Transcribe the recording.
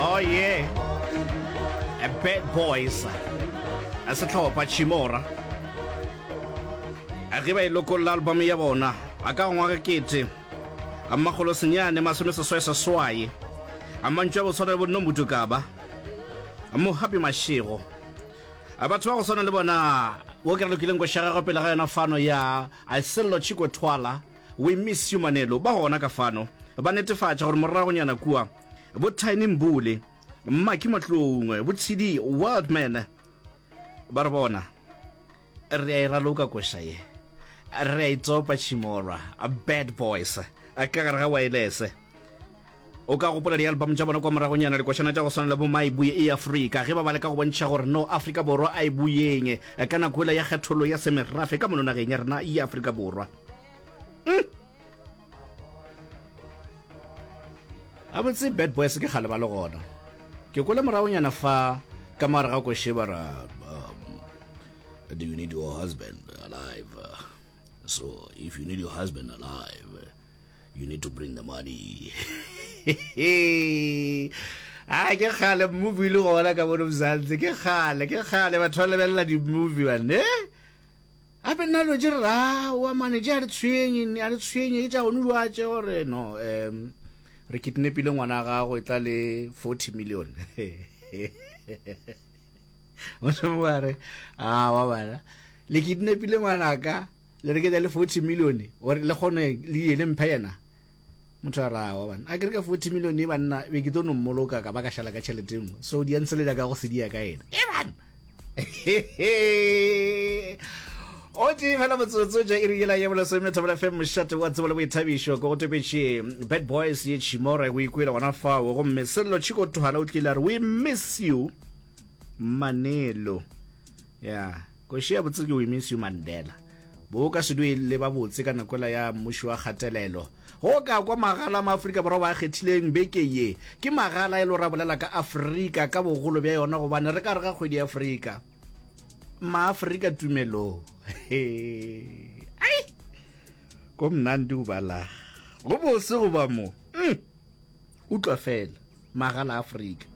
Oh yeah, a bad boys, a sehlopha Chimora. A ge ba e lokolla album ya bona, a ka ngwaga kete, a makgolo senyane masome seswai seswai, a mantšu a go swana le bo Nombutu Kaba, a Mohapi Mashego, a batho ba go swana le bona wo ke re lokileng go šaga go pele ga yona fano ya a Sello Chiko Twala, We Miss You Manelo, ba gona ka fano, ba netefatša gore moragonyana kua, bo tiny mbule mmaki matloung bo tshidi wildman ba re bona re a e raloka koša ye re a e tsopa tšhimolwa bad boys ka gare ga waelese o ka gopola di-album tša bona kwa moragonyana dikošana tša go swana le bo ma e buye e afrika ge ba ba le ka go bontšha gore no afrika borwa a e buyeng ka nako ela ya kgethollo ya semerafe ka mononageng ya rena ya afrika borwa mm. a botse bad boys ke kgale ba le gona ke kwele moragonyana fa ka mare ga kosheba ra um, do you need your husband alive so if you need your husband alive you need to bring the money a ke kgale movie le gona ka bono mzantsi ke kgale ke kgale batho ba lebelela di-movie bane Gape nna dilo tše re ra wa mane tše a re tshwenye ne a re tshwenye ke tša gone dilo a tše gore no um re kidnapile ngwana wa gago e tla le forty million mošomo wa re a wa bana le kidnapile ngwanaka le re ke tla le forty million gore le kgone le ye le mphe yena motho a rawa bana a kere ka forty million e banna be ke tlo no mmoloka ka ba ka šala ka tšhelete e nngwe so di a ntsele jaaka go sedia ka ena e bana o tee fela motsotso ja iri yela ye bolesome thobela fm mošate wa tsebo le boithabišo ko go topetše bad boys ye chimore go ikwele gona fao gomme sello chiko thwala o tlile a re we miss you manelo ya yeah. Kgoši ya botse ke We Miss You Mandela. Bo ka se due le ba botse ka nakoela ya mmuši wa kgatelelo. Go ka kwa magala a ma Afrika Borwa ba kgethileng beke ye. Ke magala e le go ra bolela ka Afrika ka bogolo bja yona gobane re ka re ga kgwedi ya Afrika. Ma Afrika tumelo. Ai! Ko mnandi go bala. Go bose go ba mo. Mm. Utlwa fela. Magala a Afrika.